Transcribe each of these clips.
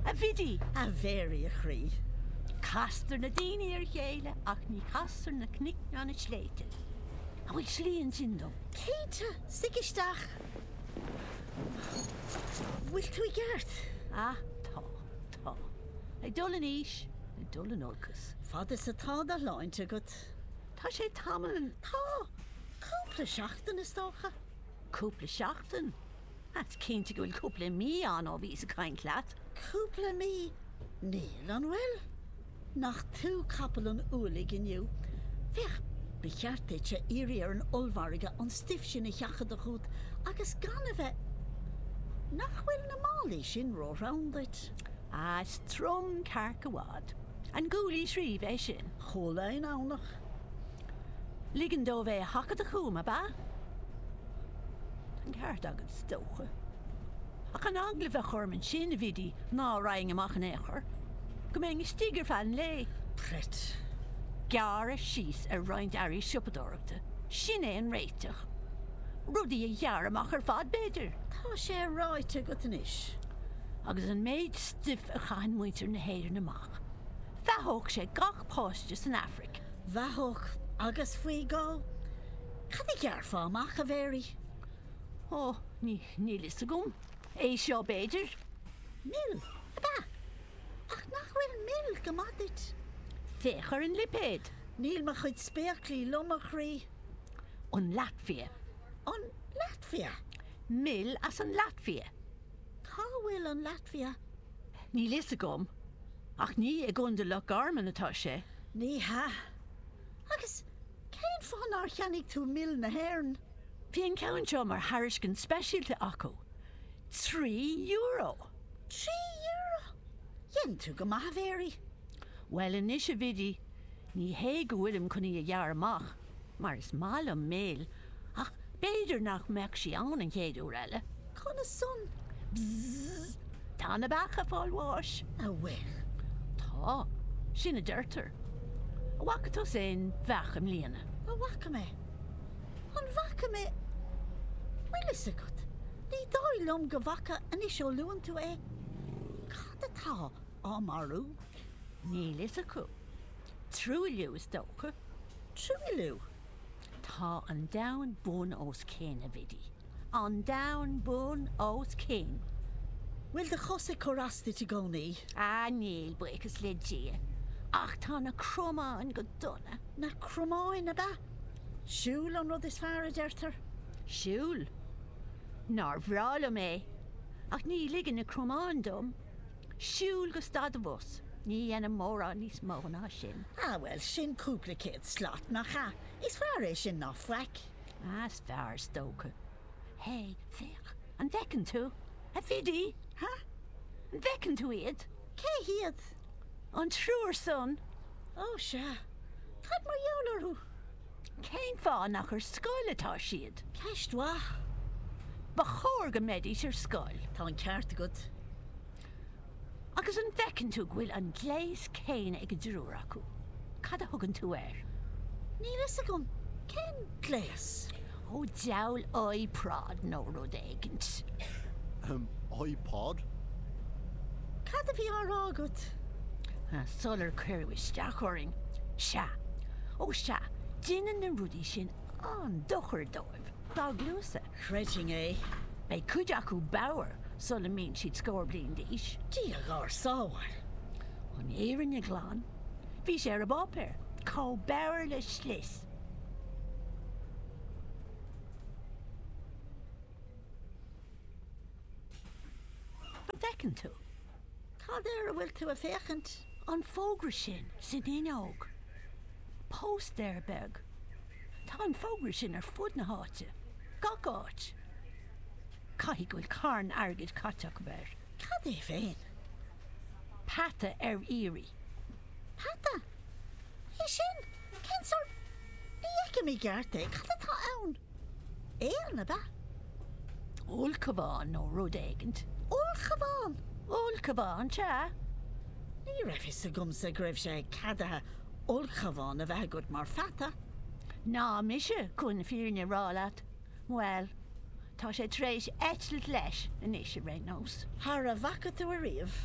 A Bhidí, a Mhéaraí a chroí. Castar na daoine ar a chéile ach ní chastar na cnoic ná na sléibhte. An bhfuil slí ansin dom? Cinnte, suigh isteach. An bhfuil tú i gceart? Á, tá, tá. Ag dul in aois, ag dul in olcas. Fad is atá do shláinte agat. Tá sé tamall, tá, cúpla seachtain is dócha. Cúpla seachtain? Is cinnte go bhfuil cúpla mí ann ó bhíos ag caint leat. Cúpla mí? Níl, an bhfuil? Nach tú capall an ualaigh inniu. Féach, ba cheart duitse iarraidh ar an ollmhargadh an stuif sin a sheachadadh chút agus gan a bheith. Nach bhfuil na málaí sin róthrom duit? Á, is trom cearc i bhfad. An gcualaís riamh é sin? Chuala i nDomhnach. Ligean dóibh é a sheachadadh chúm, ab ea? An ceart agat, is dócha. Ach an eagla a bheadh orm ansin, a Bhidí, ná raghainn amach in aon chor, go mbeinn istigh ar feadh an lae. Preit. Gearradh síos ar roinnt earraí siopadóireachta, sin é an réiteach. Rudaí a ghearradh amach ar fad, b'fhéidir. Tá sé ráite agat anois. agus an méid stuif a chaitheann muintir na hÉireann amach, bheathódh sé gach páiste san Afraic. Bheathódh, agus faoi dhó? Cad a ghearrfá amach, a Mhéaraí? Ó, ní, níl fhios agam. É seo, b'fhéidir. Mil, ab ea? Ach nach bhfuil mil go maith duit? Féach ar an lipéad. Níl mo chuid spéaclaí liom, a chroí. An Laitvia. An Laitvia? Mil as an Laitvia. Cá bhfuil an Laitvia? Níl fhios agam, ach ní i gContae Loch Garman atá sé. Ní hea. Agus cén fáth nár cheannaigh tú mil na hÉireann? Bhí an ceann seo mar thairiscint speisialta acu. Trí euro! Trí euro! Dhein tú go maith, a Mhéaraí. Bhuel anois, a Bhidí, ní hé go bhfuilim chun í a ghearradh amach. mar is maith liom mil, ach b'fhéidir nach mbeadh sí ann an chéad uair eile. Conas san? Bzzz. Tá na beacha ag fáil bháis. An bhfuil? Tá. Sin a deirtear. An bhfaca tusa aon bheach i mbliana? An bhfaca mé? An bhfaca mé? Bhfuil fhios agat, ní dóigh liom go bhfaca anois ó luann tú é. Cad atá. á marú, níl fhios acu, truailliú is dócha, truailliú, tá an domhan bun os cionn, a Bhidí, an domhan bun os cionn. Bhfuil do chos ag cur as duit i gcónaí? Á níl, buíochas le Dia, ach tá na cromáin go dona. Na cromáin, ab ea? Siúl an rud is fearr, a deirtear. Siúl? Nár bhreá liom é, ach ní ligeann na cromáin dom. Siúl go stad an bhus. Ní dhéanaim mórán níos mó ná sin. Ah, bhuel, sin cúpla céad slat, nach ea? Is fearr é sin ná faic. Ah, is fearr, is dócha. Hé, féach, an bhfeiceann tú? A Bhidí? Huh? An bhfeiceann tú iad? Cé hiad? An triúr san. Oh, sea. Cad mar gheall orthu? Cén fáth nach ar scoil atá siad? Ceist mhaith. Ba chóir go mbeidís ar scoil. Tá an ceart agat. Agus an bhfeiceann tú go bhfuil an gléas céanna ag an dtriúr acu? Cad a thugann tú air? Níl fhios agam. Cén gléas? Ó, diabhal iProd nó rud éigint. Ahem, iPod? Cad a bhí á rá agat? Sular cuireadh isteach orainn. Sea. Ó sea, déanann na rudaí sin an-dochar dóibh, dá gcluasa. Chreidfinn é. Beidh cuid acu bodhar sula mbíonn siad scór bliain d'aois. Dia dhár sábháil! An fhírinne ghlan, bhí sé ar an bpáipéar, chomh bodhar le slis. An bhfeiceann tú? Cad air a bhfuil tú ag féachaint? An fógra sin san fhuinneog. Póstaer beag. Tá an fógra sin ar fud na háite. Gach áit. Caithfidh go bhfuil carn airgid caite acu air. Cad é féin? Peata ar iarraidh. Peata? É sin? Cén sórt? Ní fheicim i gceart é. Cad atá ann? Éan, ab ea? Ulchabhán nó rud éigint. Ulchabhán? Ulchabhán, sea. Ní raibh fhios agamsa go raibh sé ceadaithe ulchabhán a bheith agat mar pheata. Ná mise, chun an fhírinne a rá leat. Bhuel, tá sé tar éis eitilt leis anois, ar aon nós. Thar a bhfaca tú ariamh.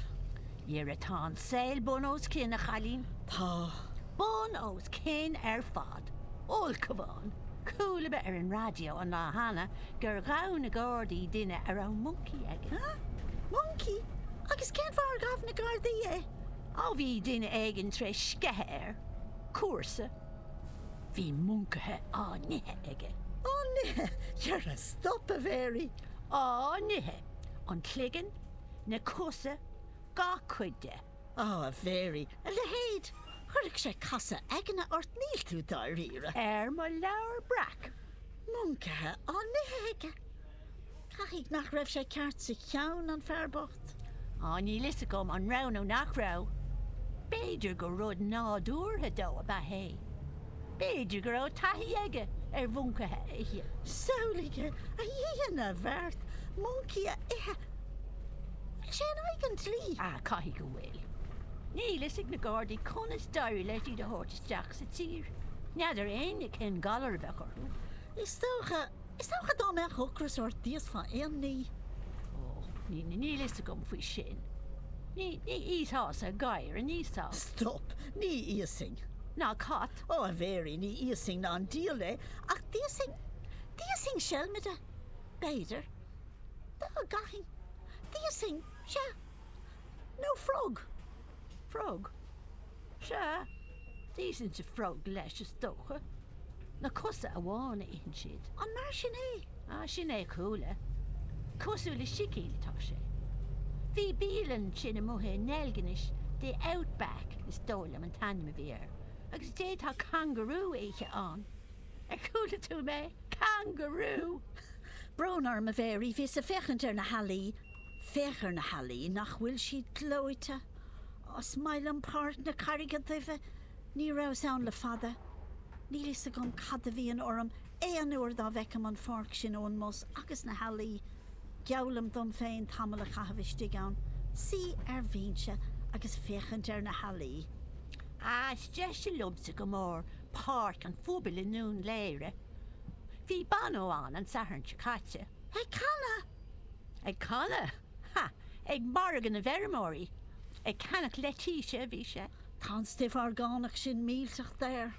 Dhera tá an saol bun os cionn, a chailín. Tá. Bun os cionn ar fad. Ulchabhán. Chuala mé ar an raidió an lá cheana gur ghabh na gardaí duine a raibh moncaí aige. Hea? Moncaí? Agus cén fáth ar ghabh na gardaí é? Ó, bhí duine éigin tar éis sceitheadh air. Cúrsaí. Bhí moncaithe á n-ithe aige. Á n-ithe! Dhera, stop, a Mhéaraí! Á n-ithe! An cloigeann, na cosa, gach cuid de. Á, a Mhéaraí, a leithéid! Chuirfeadh sé casadh aigne ort, níl tú dáiríre. Ar mo leabhar breac! Moncaithe á n-ithe aige! Caithfidh nach raibh sé ceart sa cheann, an fear bocht? Á, níl fhios agam an raibh nó nach raibh. B'fhéidir gur rud nádúrtha dó ab ea é. B'fhéidir go raibh taithí aige ar mhoncaithe a ithe. Samhlaigh, a Dhia na bhFeart, moncaí a ithe! Bhfuil sé in aghaidh an dlí? Á, caithfidh go bhfuil. Níl fhios ag na gardaí conas d'éirigh leis iad a thabhairt isteach sa tír. N'fheadar éinne cén galar a bheadh orthu. Is dócha. Is dócha dá mbeadh ocras ort d'íosfá aon ní. Ó, níl fhios agam faoi sin. Ní íosfása gadhar, an íosfá? Stop! Ní íosfainn. Ná cat. Ó, a Mhéirí, ní íosfainn ná an diabhal é, ach d'íosfainn, d'íosfainn seilmide, b'fhéidir. Dá gcaithfinn, d'íosfainn, sea, nó frog. Frog? Sea, d'íosfainnse frog leis, is dócha. Na cosa amháin a itheann siad. An mar sin é? Ah, sin é a chuala. Cosúil le sicín atá sé. Bhí bialann ansin amuigh i nDeilginis, The Outback is dóigh liom an t-ainm a bhí air, agus d'fhéadfá kangaroo a ithe ann. Ar chuala tú mé? Kangaroo! Brón orm, a Mhary, bhíos ag féachaint ar na healaí Féach ar na healaí, nach bhfuil siad gleoite? Is maith liom Páirc na Carraige Duibhe, ní rabhas ann le fada. Níl fhios agam cad a bhíonn orm aon uair dá bhfeicim an pháirc sin ón mbus agus na healaí. Geallaim dom féin tamall a chaitheamh istigh ann, suí ar bhinse agus féachaint ar na healaí. Ah, is deise liomsa go mór Páirc an Phobail i nDún Laoghaire. Bhí Bono ann an Satharn seo caite. Ag canadh? Ag canadh! Ha! Ag margadh na bhfeirmeoirí! Ag ceannach leitise a bhí sé. Tá an stuif orgánach sin millteach daor.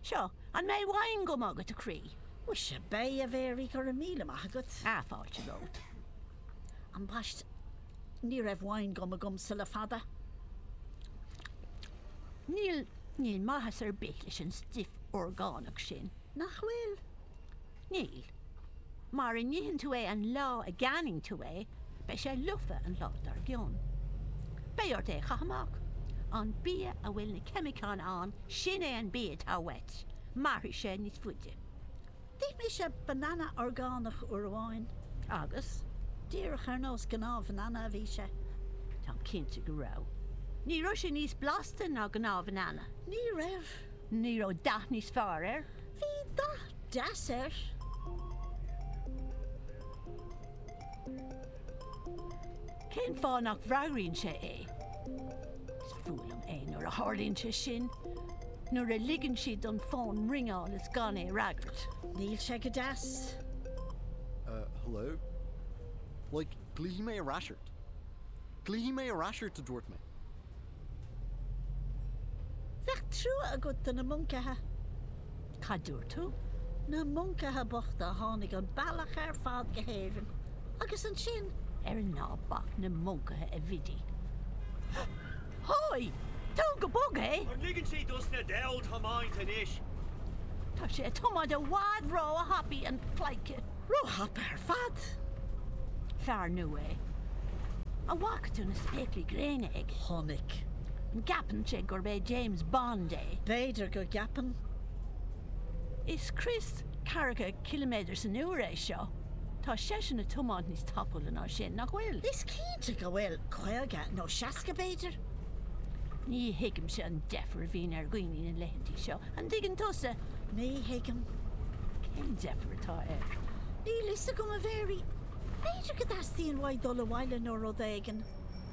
Seo, an mbeidh wine gum agat, a chroí? Muise, beidh, a Mhéaraí, go raibh míle maith agat. Ah, fáilte romhat. Ambaist, ní raibh wine gum agamsa le fada. Níl, níl maitheas ar bith leis an stuif orgánach sin, nach bhfuil? Níl. Mara n-itheann tú é an lá a gceannaíonn tú é, beidh sé lofa an lá dár gcionn. Beidh ort é a chaitheamh amach. An bia a bhfuil na ceimiceáin ann, sin é an bia atá uait. Mairfidh sé níos faide. D'ith mise banana orgánach uair amháin agus, díreach ar nós gnáthbhanana a bhí sé. Táim cinnte go raibh. Ní raibh sé níos blasta ná gnáthbhanana. Ní raibh. Ní raibh dath níos fearr air. Bhí dath deas air. Cén fáth nach bhfreagraíonn sé é? Is fuath liom é nuair a tharlaíonn sé sin, nuair a ligeann siad don fón ringeáil is gan é a fhreagairt. Níl sé go deas. Hello? Like, glaofaidh mé ar ais ort. Glaofaidh mé ar ais ort, a dúirt mé. Bheadh trua agat do na moncaithe. Cad dúirt tú? Na moncaithe bochta a tháinig an bealach ar fad go hÉirinn agus ansin ar Ná bac na moncaithe a Bhidí. Hoi! Tóg go bog é! An ligeann sé dos na deabhail tiomáint anois? Tá sé ag tiomáint i bhfad ró-thapaidh an pleidhce. Róthapa ar fad! Fear nua é. A bhfaca tú na spéaclaí gréine aige? Chonaic. An gceapann sé gurb é James Bond é? B'fhéidir go gceapann. Is crios ceathracha ciliméadar san uair é seo. Tá seisean ag tiomáint níos tapúla ná sin, nach bhfuil? Is cinnte go bhfuil. Caoga nó seasca, b'fhéidir? Ní thuigimse an deifir a bhíonn ar dhaoine na laethantaí seo, an dtuigeann tusa? Ní thuigim cén deifir atá air. Níl 'fhios agam, a Mhary. B'fhéidir go dteastaíonn uaidh dul abhaile nó rud éigin.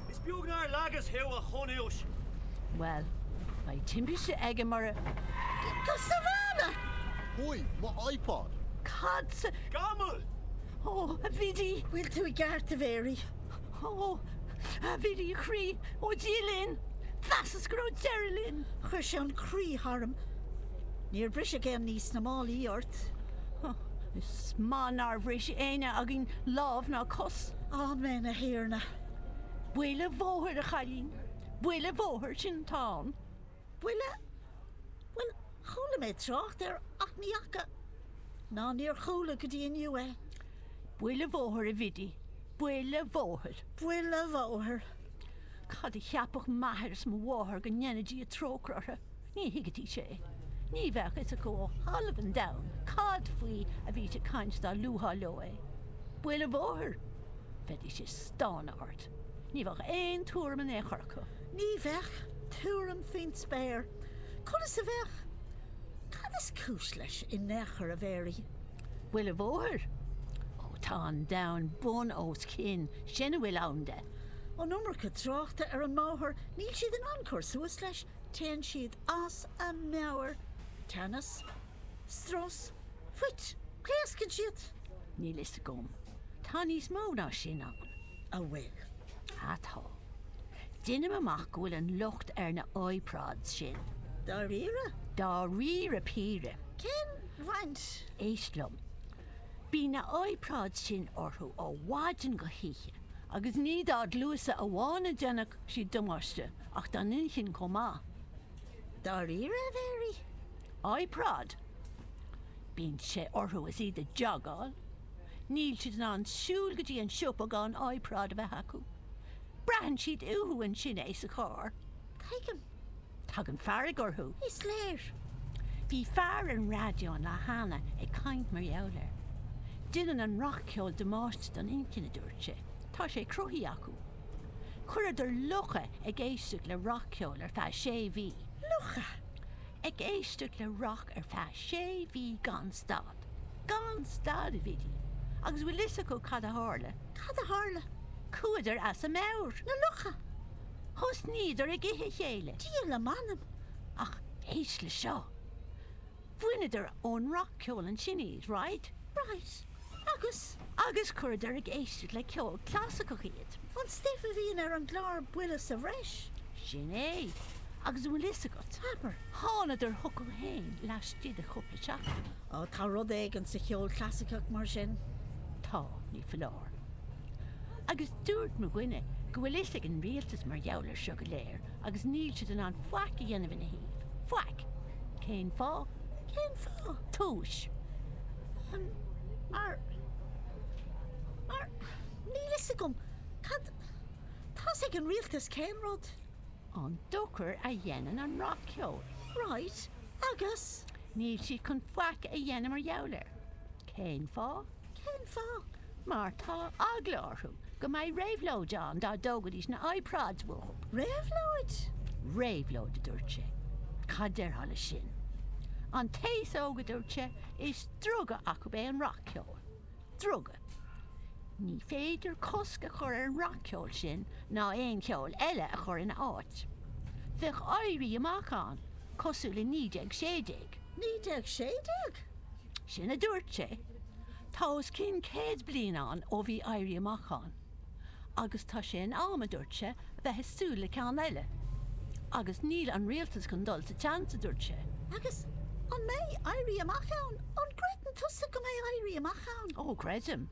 Is beag nár leagas thú, a chonúis! Bhuel, beidh timpiste aige mura. Go sábhála! Hoi, mo iPod! Cad sa. Gamal! Ó, a Bhidí! Bhfuil tú i gceart, a Mhary? Ó, a Bhidí, a chroí, ó Dia linn, mheasas go raibh deireadh linn. Chuir sé an croí tharam. Níor briseadh aon ní sna málaí ort? Ó, is maith nár bhris éinne againn lámh ná cos. Amen, a Thiarna. Buile bhóthair, a chailín, buile bhóthair, sin atá ann. Buille? Bhuel, chuala mé trácht air ach ní fhaca, ná níor chuala go dtí inniu é. Buile bhóthair, a Bhidí, buile bhóthair. Buile bhóthair. Cad a cheapfadh m'athair is mo mháthair go ndéana Dia trócaire orthu, ní thuigfidís é. Ní bheadh fhios acu ó thalamh an domhain cad faoi a bhítí ag caint dá luafá leo é. Buile bhóthair! Bheidís ag stánadh ort. Ní bheadh aon tuairim in aon chor acu. Ní bheadh tuairim faoin spéir conas a bheadh, cad is cúis leis i n-ao' chor a Mhary. Buile bhóthair, ó tá an domhan bun os cionn, sin a bhfuil ann de. An iomarca tráchta ar an mbóthar, níl siad in ann cur suas leis, téann siad as a meabhair, teannas, strus, fuit, pléascann siad. Níl fhios agam, tá níos mó ná sin ann. a bhfuil. atá. Deinim amach go bhfuil an locht ar na iPods sin. dáiríre. dáiríre píre. Cén bhaint? Éist liom. Bíonn na iPods sin orthu ó mhaidin go hoíche agus ní dá gcluasa amháin a dhéanann siad damáiste ach dá n-inchinn chomh maith. dáiríre, a Mhéaraí. iPod. Bíonn sé orthu is iad a dteagháil Níl siad in ann siúl go dtí an siopa gan iPod a bheith acu. Braitheann siad uathu ansin é sa charr. Tuigim. Tagann fearg orthu. Is léir. Bhí fear ar an raidió an lá cheana ag caint mar gheall air. Déanann an rac-cheol damáiste don inchinn, a dúirt sé. Tá sé cruthaithe acu. Chuireadar lucha ag éisteacht le rac-cheol ar feadh sé mhí. Lucha ag éisteacht le rac? ar feadh sé mhí gan stad, gan stad, a Bhidí, agus bhfuil fhios agat cad a tharla? Cad a tharla? Chuadar as a meabhair, na lucha! Thosnaíodar ag ithe a chéile, Dia lem anam! Ach éist le seo. Bhaineadar ón rac-cheol ansin iad, right? Right. agus agus chuireadar ag éisteacht le ceol clasaiceach iad. An stuif a bhíonn ar an gclár Baile sa Bhreis? Sin é. Agus an bhfuil fhios agat, mar thánadar chucu féin laistigh de chúpla seachtain. Ó, tá rud éigin sa cheol clasaiceach mar sin. Tá, ní foláir. Agus dúirt mo dhuine go bhfuil fhios ag an rialtas mar gheall ar seo go léir. agus níl siad in ann faic a dhéanamh ina thaobh. Faic! Cén fáth? Cén fáth? Túis. An, mar, mar, níl fhios agam, cad, tá's ag an rialtas cén rud. an dochar a dhéanann an rac-cheol. Right, agus. níl siad chun faic a dhéanamh mar gheall air. Cén fáth? Cén fáth? Mar tá eagla orthu go mbeadh réabhlóid ann dá dtógaidís na iPods uathu. Réabhlóid? Réabhlóid, a dúirt sé. Cad déarfá le sin? An t-aos óg, a dúirt sé, is druga acu é an rac-cheol. Druga. Ní féidir cosc a chur ar an rac-cheol sin ná aon cheol eile a chur ina áit. Bheadh éirí amach ann, cosúil le 1916. Naoi déag sé déag? Sin a dúirt sé. Tá os cionn céad bliain ann ó bhí Éirí Amach ann. Agus tá sé in am, a dúirt sé, a bheith ag súil le ceann eile. Agus níl an rialtas chun dul sa tseans, a dúirt sé. Agus an mbeidh Éirí Amach ann? An gcreideann tusa go mbeidh Éirí Amach ann? Ó, creidim.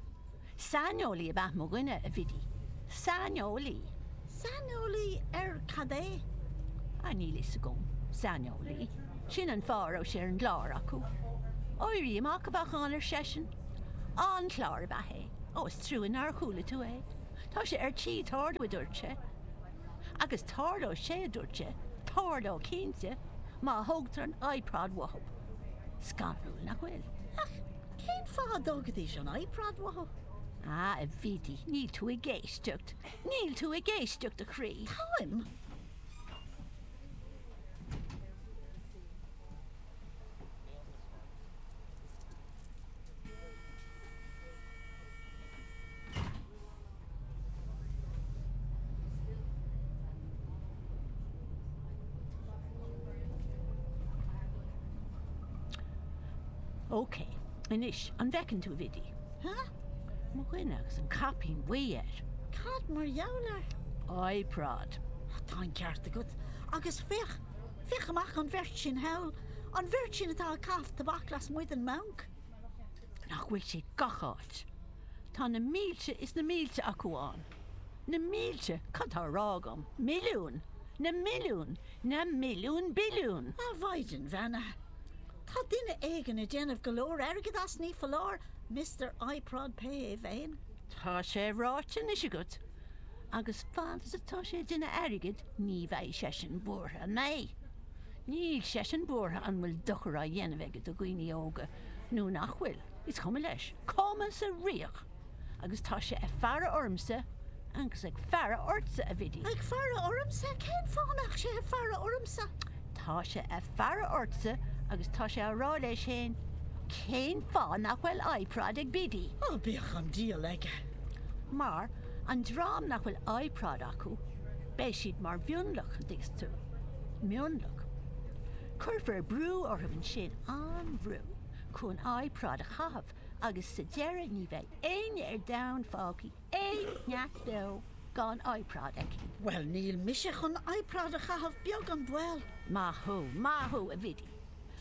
Saineolaí ab ea mo dhuine, a Bhidí. Saineolaí. Saineolaí ar cad é? Á, níl a fhios agam. Saineolaí. Sin an fáth a raibh sé ar an gclár acu. Éirí amach a bheadh ann, ar seisean. An-chlár ab ea é. Ó, is trua nár chuala tú é. Tá sé ar tí tarlú, a dúirt sé. Agus tarlóidh sé, a dúirt sé, tarlóidh cinnte, má thógtar an iProd uathu. Scanrúil, nach bhfuil? Ach. Cén fáth a dtógfaidís an iProd uathu? Á, a Bhidí, níl tú ag éisteacht. Níl tú ag éisteacht, a chroí. Táim. Ok, anois, an bhfeiceann tú, a Bhidí? Ha? Mo dhuine agus an caipín buí air. Cad mar gheall air? iProd. Tá an ceart agat. Agus féach, féach amach an bheirt sin thall, an bheirt sin atá ag caitheamh tobac lasmuigh den mbanc. Nach bhfuil siad gach áit? Tá na mílte is na mílte acu ann. Na mílte! Cad tá á rá agam? Milliúin! Na milliúin! Na milliúin billiún! A mhaighdean bheannaithe! Tá duine éigin ag déanamh go leor airgid as, ní foláir, Mister iProd, pé hé féin. Tá sé ráite anois agat, agus fad is atá sé ag déanamh airgid ní bheidh seisean buartha. An mbeidh? Níl seisean buartha an bhfuil dochar á dhéanamh aige do dhaoine óga nó nach bhfuil, is cuma leis, cuma sa riach! Agus tá sé ag faire ormsa agus ag faire ortsa, a Bhidí. Ag faire ormsa? Cén fáth a mbeadh sé ag faire ormsa? Tá sé ag faire ortsa agus tá sé á rá leis fhéin, Cén fáth nach bhfuil iProd ag Bidí? Ó, bíodh an dial aige! Mar, an dream nach bhfuil iProd acu, Beidh siad mar mhionlach, an dtuigeann tú. Mionlach. Cuirfear brú orthu ansin, an-bhrú, chun iProd a chaitheamh agus sa deireadh ní bheidh éinne ar domhan fágtha, aon neach beo gan iProd aici. Bhuel, níl mise chun iProd a chaitheamh beag an baol! Maith thú, maith thú, a Bhidí.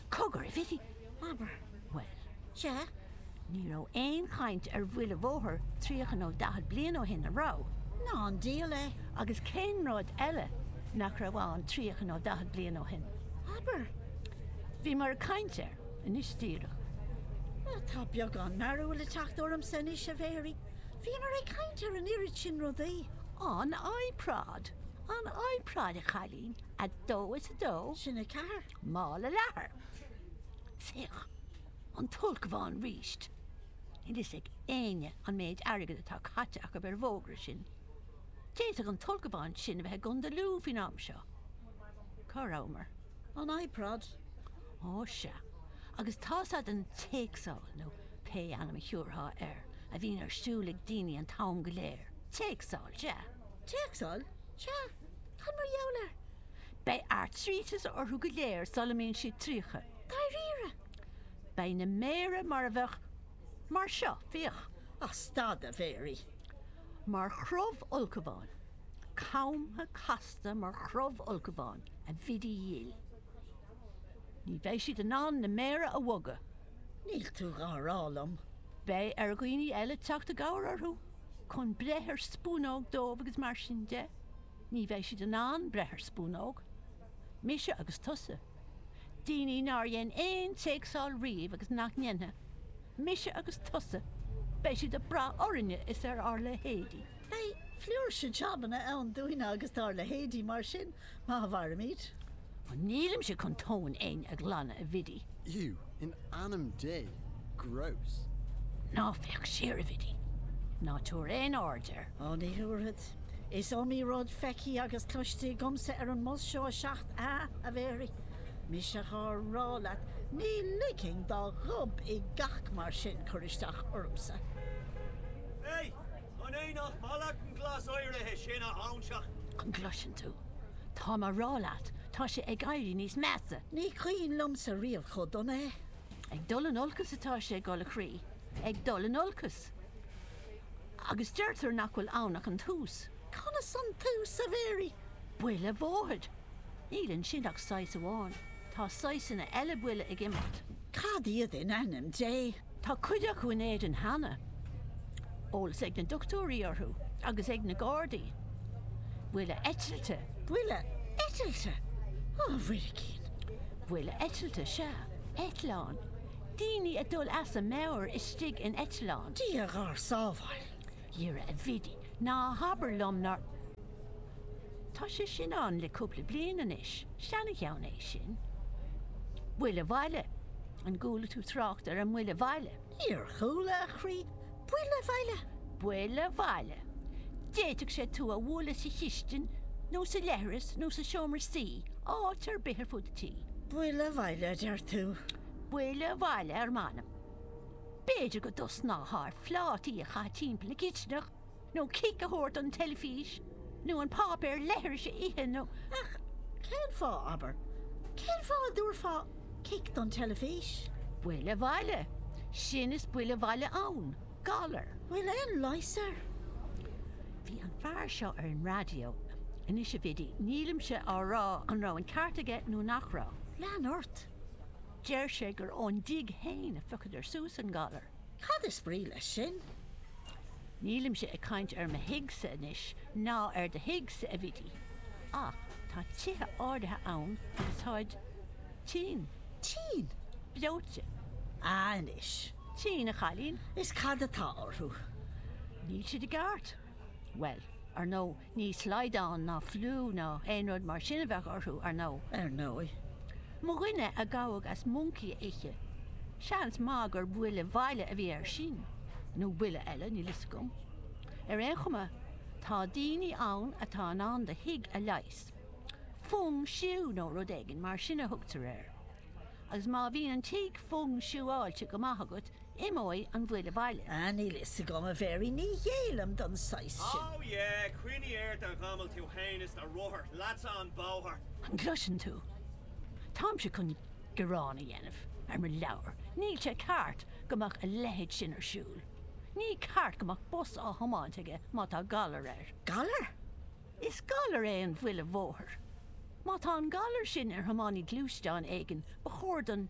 Cogar, a Bhidí! Abair, bhuel, sea, ní raibh aon chaint ar bhuile bhóthair tríocha nó daichead bliain ó shin, a' raibh? Ná an dial é! Agus cén rud eile nach raibh ann tríocha nó daichead bliain ó shin? Abair! Bhíomar ag caint air, anois díreach. Ó, tá beagán mearbhaill ag teacht ormsa anois, a Mhéaraí. Bhíomar ag caint ar an oiread sin rudaí. Á, an iProd! An iProd, a chailín! A dó is a dó? Sin a ceathair. Mála leathair, féach, an t-ulchabhán ríst, níl fhios ag éinne an méid airgid atá caite acu ar an bhfógra sin. D'fhéadfadh an t-ulchabhán sin a bheith i gCondae Lú faoin am seo. Cá rabhamar? An iProd? Ó sea, agus tá fhios agat an téacsáil, nó pé ainm a thiúrfá air, a bhíonn ar siúl ag daoine an t-am go léir. Téacsáil, sea. Téacsáil, sea, cad mar gheall air? Beidh airtríteas orthu go léir sula mbíonn siad tríocha. Dáiríre? Beidh na méara mar a bheadh. mar seo, féach. Ach stad, a Mhéaraí! Mar chrobh ulchabháin. Camtha casta mar chrobh ulchabháin, a Bhidí dhil. Ní bheidh siad in ann na méara a bhogadh. Níl tú dhá rá liom. Beidh ar dhaoine eile teacht i gcabhair orthu chun breith ar spúnóg dóibh agus mar sin de. Ní bheidh siad in ann breith ar spúnóg, mise agus tusa, daoine nár dhein aon téacsáil riamh agus nach ndéanfaidh, mise agus tusa, beidh siad ag brath orainne is ar ár leithéidí. Beidh flúirse jabanna ann dúinne agus dár leithéidí, mar sin, má mhairimid. Ó nílimse chun tóin éinne a ghlanadh, a Bhidí. Iú, in ainm Dé, gross! Ná féach siar, a Bhidí. Ná tabhair aon aird air. Ó, ní thabharfad. Is iomaí rud feicthe agus cloiste agamsa ar an mbus seo 7A, a Mhéirí. Mise dhá rá leat, ní ligfinn do ghob i gcac mar sin cur isteach ormsa. Hé! An é nach maith leat an glas áirithe sin a óinseach? An gcloiseann tú? Táim á rá leat, tá sé ag éirí níos measa. Ní cuimhin liomsa riamh chomh dona é. Ag dul in olcas atá sé, a dhul a chroí, ag dul in olcas. Agus deirtear nach bhfuil ann ach an tús. Conas an tús, a Mhéaraí? Buile bhóthair! Níl ansin ach saghas amháin, tá saghsanna eile buile ag imeacht. Cad iad, in ainm Dé? Tá cuid acu in Éirinn cheana, eolas ag na dochtúirí orthu agus ag na gardaí. Buile eitilte! Buile eitilte! Ó, a Mhuiricín! Buile eitilte, sea, eitleán, daoine ag dul as a meabhair istigh in eitleán. Dia dhár sábháil! Dhera a Bhidí, ná habair liom nár. Tá sé sin ann le cúpla bliain anois, seancheann é sin. Buile Bhaile, an gcuala tú trácht ar an mBuile Bhaile? Níor chuala, a chroí. Buile Bhaile? Buile Bhaile. D'fhéadfadh sé tú a bhualadh sa chistin nó sa leithreas nó sa seomra suí, áit ar bith ar fud an tí. Buile Bhaile a deir tú? Buile Bhaile, ar m'anam. B'fhéidir go dtosnófá ar phlátaí a chaitheamh timpeall na cistineach, nó cic a thabhairt don teilifís, nó an páipéar leithris a ithe, nó. Ach cén fáth, abair, cén fáth a dtabharfá cic don teilifís? Buile bhaile, sin is buile bhaile ann, galar. Bhfuil aon leigheas air? Bhí an fear seo ar an raidió. Anois, a Bhidí, nílimse á rá an raibh an ceart aige nó nach raibh. Lean ort. Deir sé gur ón dtigh féin a phiocadar suas an galar. Cad is brí leis sin? Nílimse ag caint ar mo thigh-sa anois, ná ar do thigh-sa, a Bhidí, ach tá tithe áirithe ann agus táid tinn. Tinn? Breoite. Á anois. Tinn, a chailín. Is cad atá orthu? Níl siad i gceart. Bhuel, ar ndóigh, Ní slaghdán ná fliú ná aon rud mar sin a bheadh orthu, ar ndóigh. Ar ndóigh, mo dhuine a gabhadh as moncaí a ithe, seans maith gur buile bhaile a bhí air sin, nó buile eile, níl 'fhios agam. Ar aon chuma, tá daoine ann atá in ann do thigh a leigheas. Fung shiú nó rud éigin mar sin a thugtar air. Agus má bhíonn an tigh fung shiúáilte go maith agat, Imeoidh an bhuile bhaile. Ah, níl a fhios agam, a Mhéaraí, ní ghéillim don saghas sin. Oh yeah, coinnigh ort a ghamail tú fhéin is do rothar, leatsa an bóthar. An gcloiseann tú? Táimse chun gearán a dhéanamh ar mo leabhar. Níl sé ceart go mbeadh a leithéid sin ar siúl. Ní ceart go mbeadh bus á thiomáint aige má tá galar air. Galar? Is galar é an bhuile bhóthair. Má tá an galar sin ar thiománaí gluaisteáin éigin, ba chóir don.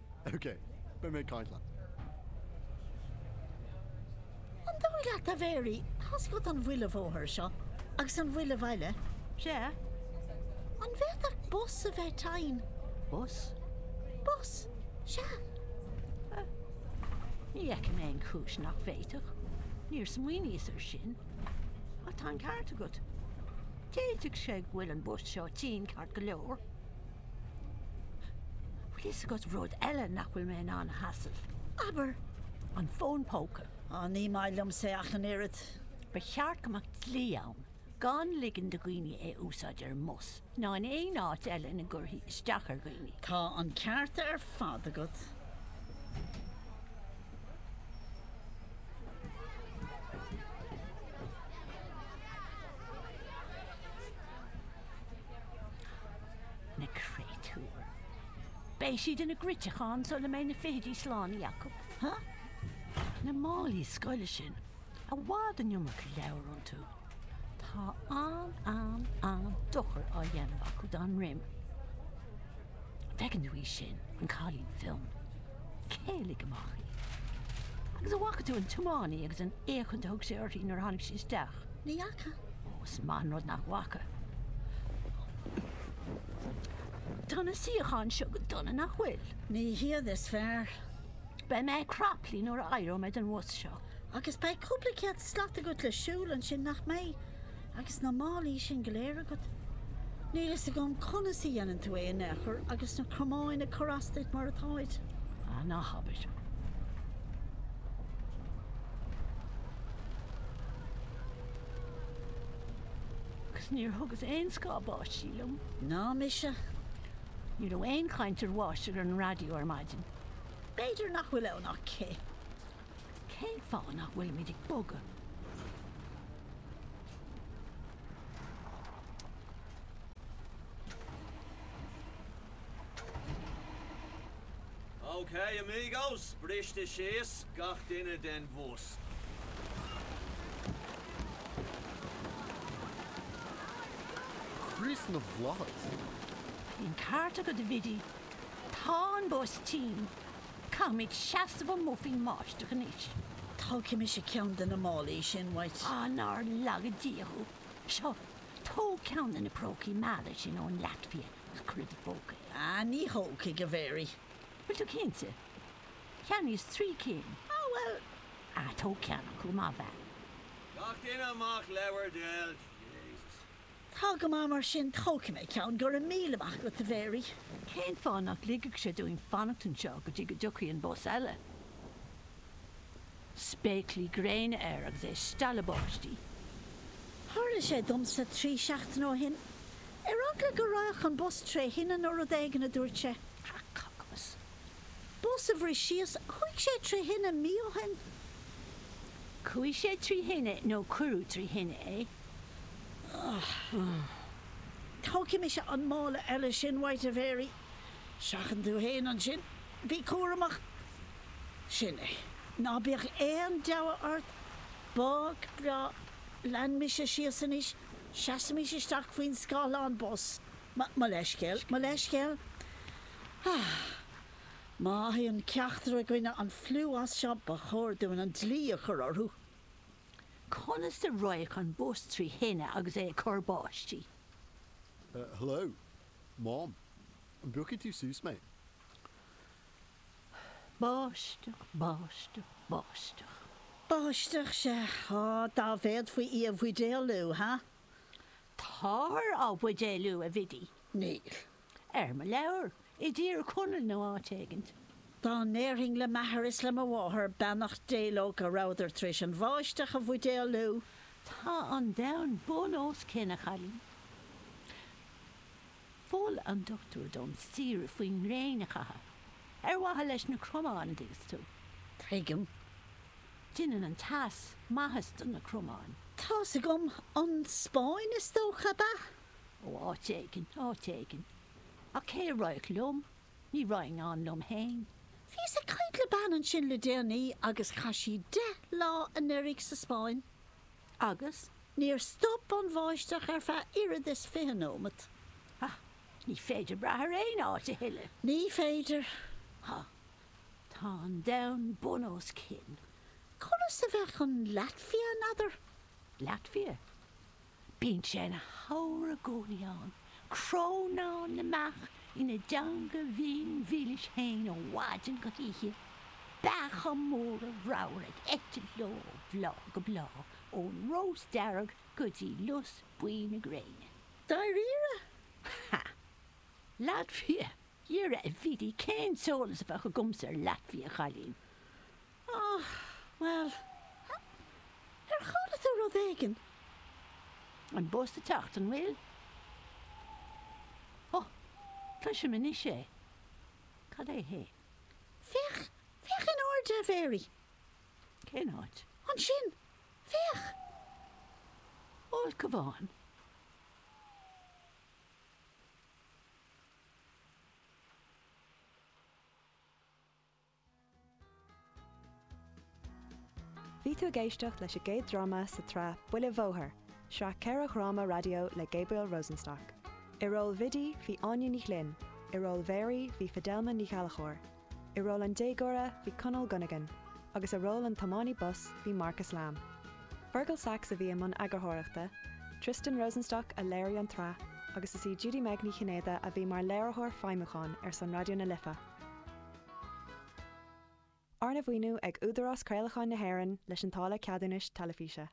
OK, beidh mé ag caint leat. An dóigh leat, a Mhéaraí, tá's agat an bhuile bhóthair seo agus an bhuile bhaile, sea, an bhféadfadh bus a bheith teinn? Bus? Bus, sea. Ní fheicim aon chúis nach bhféadfadh. Níor smaoiníos ar sin. Ach tá an ceart agat. D'fhéadfadh sé go bhfuil an bus seo tinn ceart go leor. Bhfuil fhios agat rud eile nach bhfuil mé in ann a sheasamh? Abair! An fón póca. Á, ní maith liomsa é ach an oiread. Ba cheart go mbeadh dlí ann gan ligean do dhaoine é a úsáid ar an mbus ná in aon áit eile ina gcuirfí isteach ar dhaoine. Tá an ceart ar fad agat. Na créatúir! Beidh siad ina gcruiteacháin sula mbeidh na fichidí slánaithe acu. Na málaí scoile sin, i bhfad an iomarca leabhar iontu. Tá an, an, an-dochar á dhéanamh acu dá ndroim. Feiceann tú í sin, an cailín fionn. Céilí amach í. Agus an bhfaca tú an tiománaí agus an fhéachaint a thug sé uirthi nuair a tháinig sí isteach? Ní fhaca. Ó, is maith an rud nach bhfaca. Tá na suíocháin seo go dona, nach bhfuil? Ní hiad is fearr. Beidh mé craplaithe nuair a éireoidh mé den bhus seo. Agus beidh cúpla céad slat agat le siúl ansin, nach mbeidh, agus na málaí sin go léir agat? Níl a fhios agam conas a dhéanann tú é in aon chor agus na cromáin ag cur as duit mar atáid. Ah, ná habair. Agus níor thugas aon scáth báistí liom. Ná mise. Ní raibh aon chaint ar bháisteach ar an raidió ar maidin. B'fhéidir nach bhfuil ann ach cith. Cén fáth nach bhfuilimid ag bogadh? Ok amigos, briste síos gach duine den bhus. Chríost na bhFlaitheas! Bhí an ceart agat a Bhiddy. Tá an bus tinn. Caithfimid seasamh amuigh faoin mbáisteach anois. Tógfaidh mise ceann de na málaí sin uait. Á nár laga Dia thú! Seo, tóg ceann de na prócaí meala sin ón Laitvia. Is cuid de phócaí. Ah, ní thógfaidh, a Mhary. Bhfuil tú cinnte? Cheannaíos trí cinn. Ah, bhuel. Ah, tóg ceann acu, mo bheach. Gach duine amach le bhur dtoil. Jesus. Tá go maith mar sin, tógfaidh mé ceann, go raibh míle maith agat, a Mhary. Cén fáth nach ligfeadh sé dúinn fanacht anseo go dtí go dtiocfaidh an bus eile? spéaclaí gréine air agus é stealladh báistí. Tharla sé domsa trí seachtaine ó shin. Ar eagla go rachadh an bus trí thine nó rud éigin, a dúirt sé. Crac cac agus. Bus a bhris síos, chuaigh sé trí thine mí ó shin. Chuaigh sé trí thine nó cuireadh trí thine é. Ugh. Tógfaidh mise an mála eile sin uait, a Mhary. Seachain tú fhéin ansin. Bí cúramach. Sin é. Ná bíodh aon deabhadh ort, bog breá, lean mise síos anois, seasaimis isteach faoin scáthlán bus. Mo, mo leithscéal, mo leithscéal. Há! Má fhaigheann ceachtar againne an fliú as seo, ba chóir dúinn an dlí a chur orthu. Conas a raghadh an bus trí thine agus é ag cur báistí? Hello! Mom! An bpiocfaidh tú suas mé? Báisteach, báisteach, báisteach. Báisteach, sea, á, dá bhféadfaí í a bhuidéalú, ha! Táthar á buidéalú, a Bhidí. Níl. Ar mo leabhar, i dTír Chonaill nó áit éigin. Dá ndéarfainn le m'athair is le mo mháthair, beannacht Dé leo, go rabhadar tar éis an bháisteach a bhuidéalú. Tá an domhan bun os cionn, a chailín. Mhol an dochtúir dom saoire faoin ngréin a chaitheamh, ar mhaithe leis na cromáin, a dúirt sé. Tuigim. Déanann an teas maitheas do na cromáin. Tá's agam. An Spáinn, is dócha, ab ea? Ó, áit éigin, áit éigin. Ach cé a raghadh liom? Ní raghainn ann liom fhéin. Bhíos ag caint le bean ansin le déanaí agus chaith sí deich lá anuraidh sa Spáinn. agus. Níor stop an bháisteach ar feadh oiread is fiche nóimeat. Ach ní féidir brath ar aon áit a thuilleadh. Ní féidir. Tá. Tá an domhan bun os cionn. Conas a bheadh an Laitvia, n'fheadar? Laitvia? Bíonn sé ina shamhradh i gcónaí ann. Crónán na mbeach ina dteanga bhinn mhilis féin ó mhaidin go hoíche, beacha móra ramhra ag eitilt leo ó bhláth go bláth, ón rós dearg go dtí lus buí na gréine. Dáiríre? Ha! Laitvia? Dhera a Bhidí, cén t-eolas a bheadh agamsa ar Laitvia, a chailín? Ó, bhuel, ar chuala tú rud éigin? An bus ag teacht, an bhfuil? Ó, cloisim anois é. Cad é é? Féach, féach in airde, a Mhéirí! Cén áit? Ansin! Féach! Ulchabhán. Bhí tú ag éisteacht leis an gcéad dráma sa tsraith Buile Bhóthair, sraith ceithre dhráma raidió le Gabriel Rosenstock. I ról Bhidí bhí Áine Ní Ghlinn, i ról Mhéirí bhí Fidelma Ní Ghallchobhair, i ról an déagóra bhí Conal Gunnigan, agus i ról an tiománaí bus bhí Marcus Lamb. Fergal Saxe a bhí i mbun eagarthóireachta, Tristan Rosenstock a léirigh an tsraith agus is í Judy-Meg Ní Chinnéide a bhí mar léiritheoir feidhmiúcháin ar son Raidió na Life. Arna mhaoiniú ag Údarás Craolacháin na hÉireann leis an táille ceadúnais teilifíse.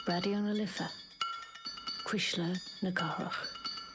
Raidió na Life, Cuisle na Cathrach.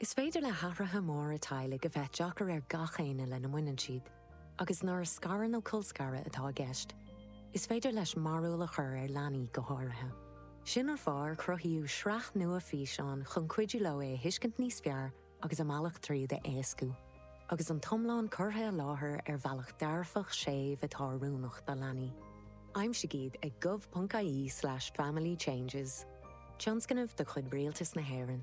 Is féidir le hathruithe móra teaghlaigh a bheith deacair ar gach éinne lena mbaineann siad, agus nuair a scaradh nó colscaradh atá i gceist, is féidir leis mearbhall a chur ar leanaí go háirithe. Sin an fáth ar cruthaíodh sraith nua físeán chun cuidiú leo é a thuiscint níos fearr agus a mbealach tríd a éascú. Agus an t-iomlán curtha i láthair ar bhealach dearfach séimh atá oiriúnach do leanaí. Aimsigh iad ag gov.ie slash family changes, tionscnamh de chuid Rialtas na hÉireann.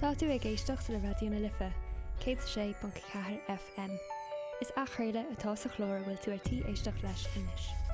Tá tú ag éisteacht le Raidió na Life, 106.4 FM. Is athchraoladh atá sa chlár a bhfuil tú ar tí éisteacht leis anois.